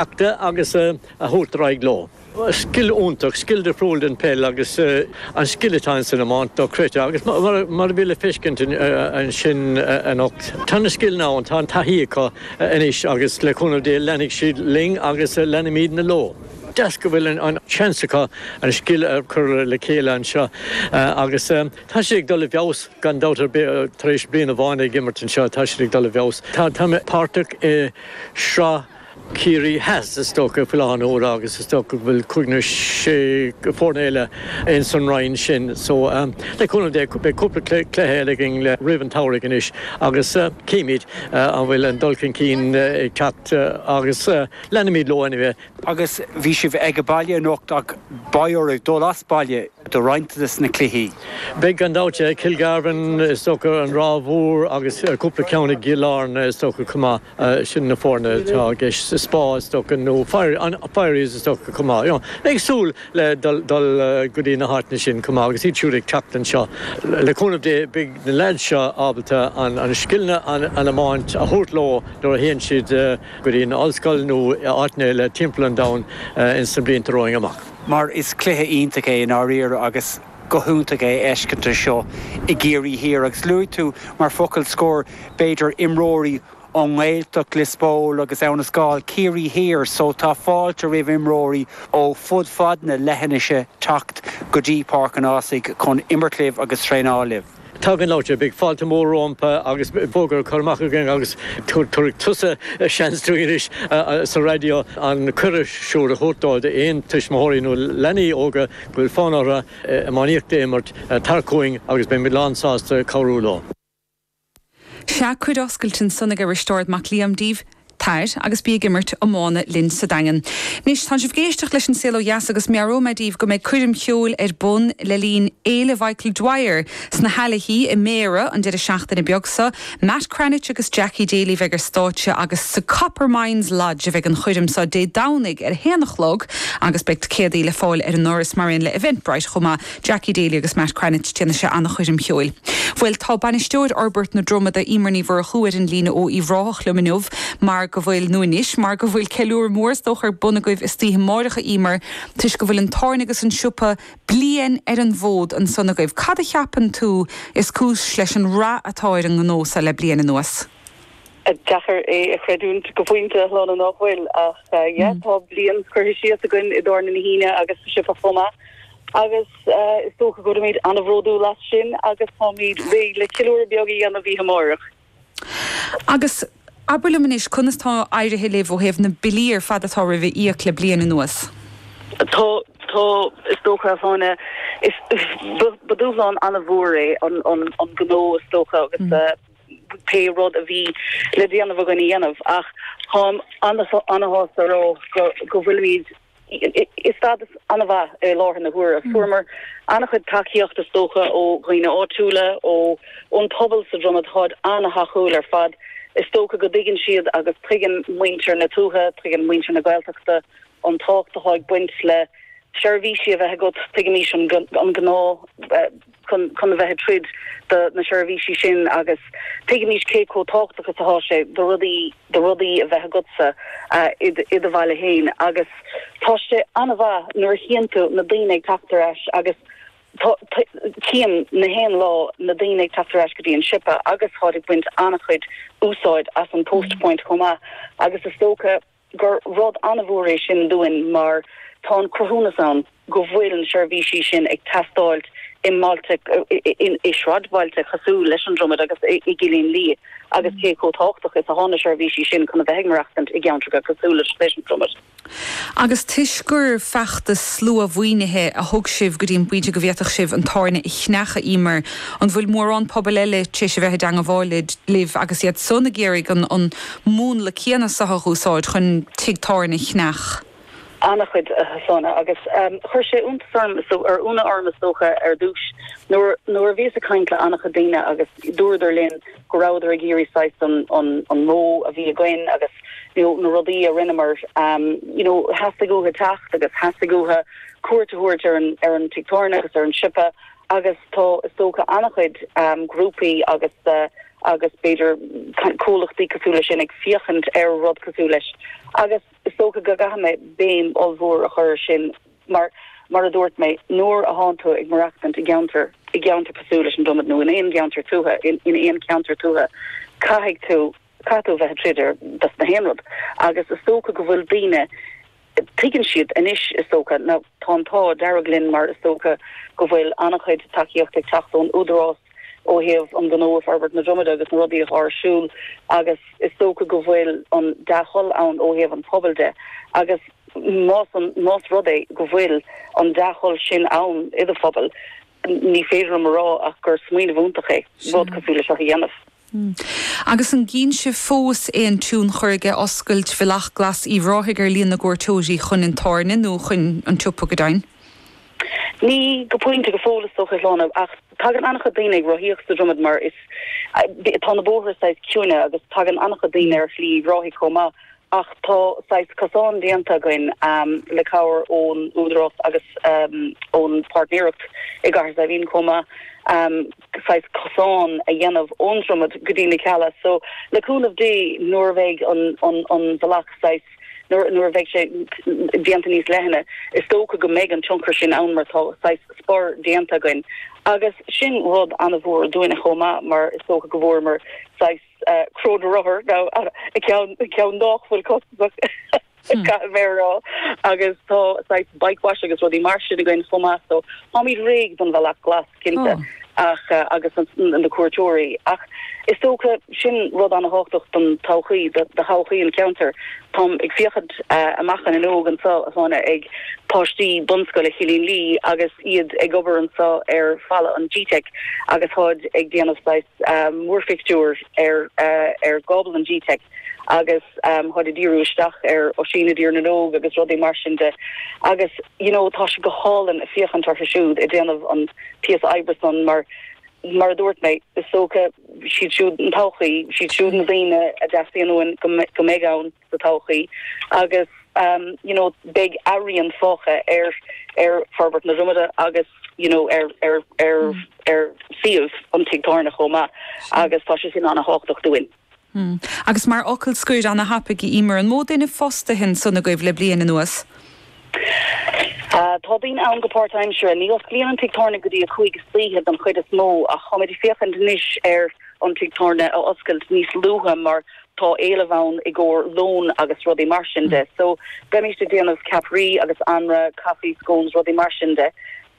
Achta agus a thabhairt ar aghaidh leo. Scil iontach, scil difriúil ón bpeil agus an scil atá ins an iomáint dochreidte agus mar a bhí le feiscint ansin anocht, tá na scileanna ann, tá an taithí acu anois agus le cúnamh Dé leanfaidh siad linn agus leanfaimidne leo. Deas go bhfuil an seans acu an scil a chur le chéile anseo agus tá siad ag dul i bhfeabhas gan dabht ar bith tar éis bliain amháin ag imirt anseo, tá siad ag dul i bhfeabhas. Táimid páirteach i sraith. Ciarraí Theas, is dócha, faoi láthair na huaire agus is dócha go bhfuil cúig nó sé foireann eile ins an roinn sin so le cúnamh Dé beidh cúpla cluiche eile againn le roimh an tsamhraidh anois agus cífimid an bhfuil an dul chun cinn ag teacht agus leanfaimid leo anyway. Agus bhí sibh aige baile anocht ach beidh oraibh dul as baile do roinnt de na cluichí. Beidh gan dabht, Kilgarvan is dócha, an Ráth Mhór agus cúpla ceann i gCill Airne is dócha chomh maith. Sin na foirne atá i gceist sa Spá is dócha, nó Firies is dócha chomh maith. Ag súil le dul go dtí na háiteanna sin chomh maith agus iad siúd ag teacht anseo. Le cúnamh Dé beidh na leaids seo ábalta na scileanna iomáint a thabhairt leo nuair a théann siad go dtí na ollscoil nó áiteanna eile timpeall an domhain ins na blianta romhainn amach. Mar is cluiche iontach é i ndáiríre agus. go hiontach é fheiscint seo i gCiarraí Thiar agus luaigh tú mar focal scoir b'fhéidir imreoirí ón nGaeltacht, Lios Póil agus Abhainn an Scáil, Ciarraí Thiar so tá fáilte roimh imreoirí ó fud fad na leithinise teacht go dtí Páirc an Ásaigh chun imirt libh agus traenáil libh. Tá gan dabht, beidh fáilte mór rompu agus fógra curtha amach againn agus tabharfaidh tusa seans dúinn anois sa raidió an cuireadh siúd a thabhairt dóibh d'aon tuismitheoirí nó leanaí óga go bhfuil fonn orthu iománaíocht a imirt. Tar chugainn agus beimid lán sásta cabhrú leo. Sea, cuireadh oscailte ansan ag Risteard Mac Liaim daoibh, tair agus bí ag imirt iomána linn sa Daingean. Anois, tánn sibh ag éisteacht leis an Saol Ó Dheas agus meabhróidh mé daoibh go mbeidh coirm cheoil ar bun le linn Fhéile Mhichael Dwyer sna hAilichí i mBéarra an deireadh seachtaine beag so. Matt Cranitch agus Jackie Daly a bheidh ar stáitse agus sa Coppermines Lodge a bheidh an choirm so Dé Domhnaigh ar a haon a chlog agus beidh ticéadaí le fáil ar an ndoras mar aon le Eventbrite chomh maith. Jackie Daly agus Matt Cranitch, déanfaidh sé an-choirm cheoil. Bhuel, tá bainisteoir Fhorbairt na Dromoda, Emer Ní Mhurchú, ar an líne ó Uíbh Ráthach liom inniu mar go bhfuil, nó anois, mar go bhfuil ceiliúradh mór is dócha ar bun agaibh istoíche amáireach, a Emer, toisc go bhfuil an tábhairne agus an siopa bliain ar an bhfód ansan agaibh. Cad a cheapann tú is cúis leis an rath atá ar an ngnó seo le bliain anuas? Deacair é a chreidiúint go pointe, a Shláine, nach bhfuil? Ach yeah, tá bliain curtha síos againn i dTábhairne na hUíne agus sa siopa chomh maith. Agus is dócha go raibh muid an-bhródúil as sin agus táimid réidh le ceiliúradh beag a dhéanamh oíche amárach. Agus abair liom anois, conas tá éirithe libh ó thaobh na billí ar fad atá romhaibh a íoc le bliain anuas? Tá, tá. Is dócha, a Sheáin, ba dhúshlán an-mhór é an gnó, is dócha, agus pé rud a bhí le déanamh againn a dhéanamh. Ach táim an-sásta a rá go bhfuilimid i stádas an-mhaith i láthair na huaire. Fuaireamar an-chuid tacaíocht, is dócha, ó dhaoine áitiúla, ó, ón pobal sa Dromaid, táid an-tacúil ar fad. Is dócha go dtuigeann siad agus tuigeann muintir na tuaithe, tuigeann muintir na Gaeltachta an tábhacht atá ag baint le seirbhísí a bheith agat. Tuigimidne an gá, eh, chun a bheith ag troid do na seirbhísí sin agus tuigimidne cé chomh tábhachtach is atá sé do rudaí do rudaí a bheith agat i do bhaile féin agus tá sé an-mhaith nuair a chíonn tú na daoine ag teacht ar ais agus cím na haon lá na daoine ag teacht ar ais go dtí an siopa agus táid ag baint an-chuid úsáid as an Post Point chomh maith agus is dócha gur rud an-mhór é sin dúinn mar tá an cruthúnas ann go bhfuil na seirbhísí sin ag teastáilt i mbailte, i sráidbhailte cosúil leis an Dromaid agus i gCillín Liath, agus cé chomh tábhachtach is atá na seirbhísí sin chun a bheith ag maireachtaint i gceantracha cosúil leis an Dromaid. Agus toisc gur feachtas sluamhaoinithe a thug sibh go dtí an bpointe go bhféadfadh sibh an tábhairne a cheannach, Emer, an bhfuil mórán pobail eile tar éis a bheith i dteangmháil libh agus iad san ag iarraidh an múnla céanna so a úsáid chun tigh tábhairne a cheannach. An-chuid, a Sheáin, agus chuir sé iontas ionadh orm is dócha, ar dtús nuair, nuair a bhíos ag caint le an-chuid daoine agus dúradar linn go rabhadar ag iarraidh saghas an, an, an modh a bhí againn agus, you know, na rudaí a rinneamar, you know, theastaigh uathu teacht agus theastaigh uathu cuairt a thabhairt ar an, ar an tigh tábhairne agus ar an siopa Agus tá, is dócha, an-chuid grúpaí agus agus b'fhéidir comhlachtaí cosúil leis sin ag féachaint ar rud cosúil leis agus is dócha go gcaithfidh mé béim ollmhór a chur ar sin mar, mar a dúirt mé, nuair a thánn tú ag maireachtaint i gceantar, i gceantar cosúil leis an Dromaid nó in aon gceantar tuaithe, in aon cheantar tuaithe, caithfidh tú. Caithfidh tú a bheith ag troid ar dos na haon rud agus is dócha go bhfuil daoine, tuigeann siad anois is dócha, ná tá an t-ádh dearg linn mar is dócha go bhfuil an-chuid tacaíocht ag teacht ón Údarás ó thaobh an gnó agus forbairt na Dromoda agus na rudaí atá ar siúl agus is dócha go bhfuil an dea-thoil ann ó thaobh an phobail de agus más an, más rud é go bhfuil an dea-thoil sin ann i do phobal, ní féidir liom a rá ach gur smaoineamh iontach é rud cosúil leis seo a dhéanamh. Agus an gcíonn sibh fós aon tionchar aige oscailt Bhealach Glas Uíbh Ráthaigh ar líon na gcuairteoirí chuin an tábhairne nó chuin an tsiopa go deimhin? Ní go pointe go fóill is dócha, a Shláine, ach tagann an-chuid daoine ag rothaíocht sa Dromaid mar is, tá na bóithre saghas ciúine agus tagann an-chuid daoine ar Shlí Uíbh Ráthaigh chomh maith ach tá saghas cosán déanta againn le cabhair ón Údarás agus ón pháirtnéireacht i gCathair Saidhbhín chomh maith. saghas cosáin a dhéanamh ón Dromaid go dtí na Cealla so le cúnamh Dé nuair a bheidh an, an, an bhealach saghas, nuair, nuair a bheidh sé déanta níos leithne is dócha go mbeidh an tionchar sin ann mar tá saghas spur déanta againn agus sin rud ana-mhór dúinne chomh maith mar is dócha go bhfuaireamar saghas eh, cró na rothar nó a, a, ceann, ceann nách bhfuil costasach. Caithfidh mé a rá. Agus tá saghas bike wash agus rudaí mar sin againn chomh maith so táimid réidh don bhealach glas, cinnte, ach, agus na cuairteoirí. Ach is dócha, sin rud an-tábhachtach don todhchaí, do thodhchaí an cheantair. Táim ag féachaint amach an fhuinneog anseo, a Shláine, ag páistí bunscoile Chillín Liath agus iad ag obair anseo ar falla an gteic agus táid ag déanamh saghas múrphictiúir ar, ar, ar ghábla an gteic. agus táid ag díriú isteach ar Oisín i dTír na nÓg agus rudaí mar sin de agus you know tá sé go hálainn ag féachaint orthu siúd ag déanamh an píosa oibre san mar mar a dúirt mé is dócha siad siúd an todhchaí, siad siúd na daoine a dteastaíonn uainn go mbeidh ann sa todhchaí agus you know beidh a rian fágtha ar ar forbairt na Dromoda agus you know ar ar ar ar suíomh an Tigh Tábhairne chomh maith agus tá sé sin an-thábhachtach dúinn. Hm. Agus mar fhocal scoir, ana-thapaidh, a Emer, an mó duine fostaithe ansan agaibh le bliain anuas? Tá daoine ann go páirtaimseartha. Ní osclaíonn an tigh tábhairne go dtí a cúig istoíche don chuid is mó ach táimid ag féachaint anois ar an tigh tábhairne a oscailt níos luaithe mar tá éileamh ann i gcomhair lón agus rudaí mar sin de. So, beimíst ag déanamh ceapairí agus anraith, coffee, scones, rudaí mar sin de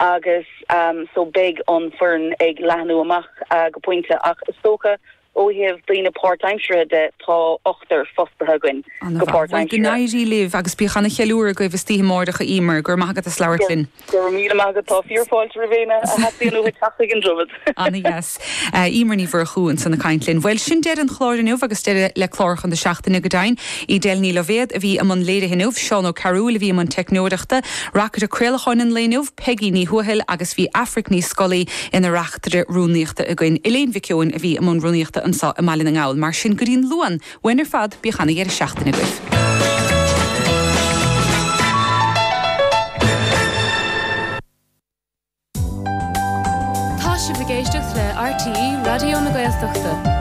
agus, em, so beidh an fhoireann ag leathnú amach go pointe ach is dócha Ó thaobh daoine páirtaimseartha de, tá ochtar fostaithe againn go páirtaimseartha. Go n-éirí libh agus bíodh an-cheiliúradh agaibh istoíche amáireach, a Emer. Go raibh maith agat as labhairt linn. Go raibh míle maith agat. Tá fíor-fáilte roimh éinne a theastaíonn uathu teacht chuig an Droichead. Ana-dheas. Emer Ní Mhurchú ansan ag caint linn. Bhuel, sin deireadh an chláir inniu agus deireadh le cláracha na seachtaine, go deimhin. Edel Ní Loibhéad a bhí i mbun léirithe inniu, Seán Ó Cearúill a bhí i mbun teicneoireachta, reachtaire craolacháin an lae inniu, Peigí Ní Thuathail agus bhí Aifric Ní Scolaí ina reachtaire rúnaíochta againn. Elaine Mhic Eoin a bhí i mbun rúnaíochta anseo i mBaile na nGall. Mar sin, go dtí an Luan, uainn ar fad, bíodh ana-dheireadh seachtaine agaibh. Tá sibh ag éisteacht le RTÉ Raidió na Gaeltachta.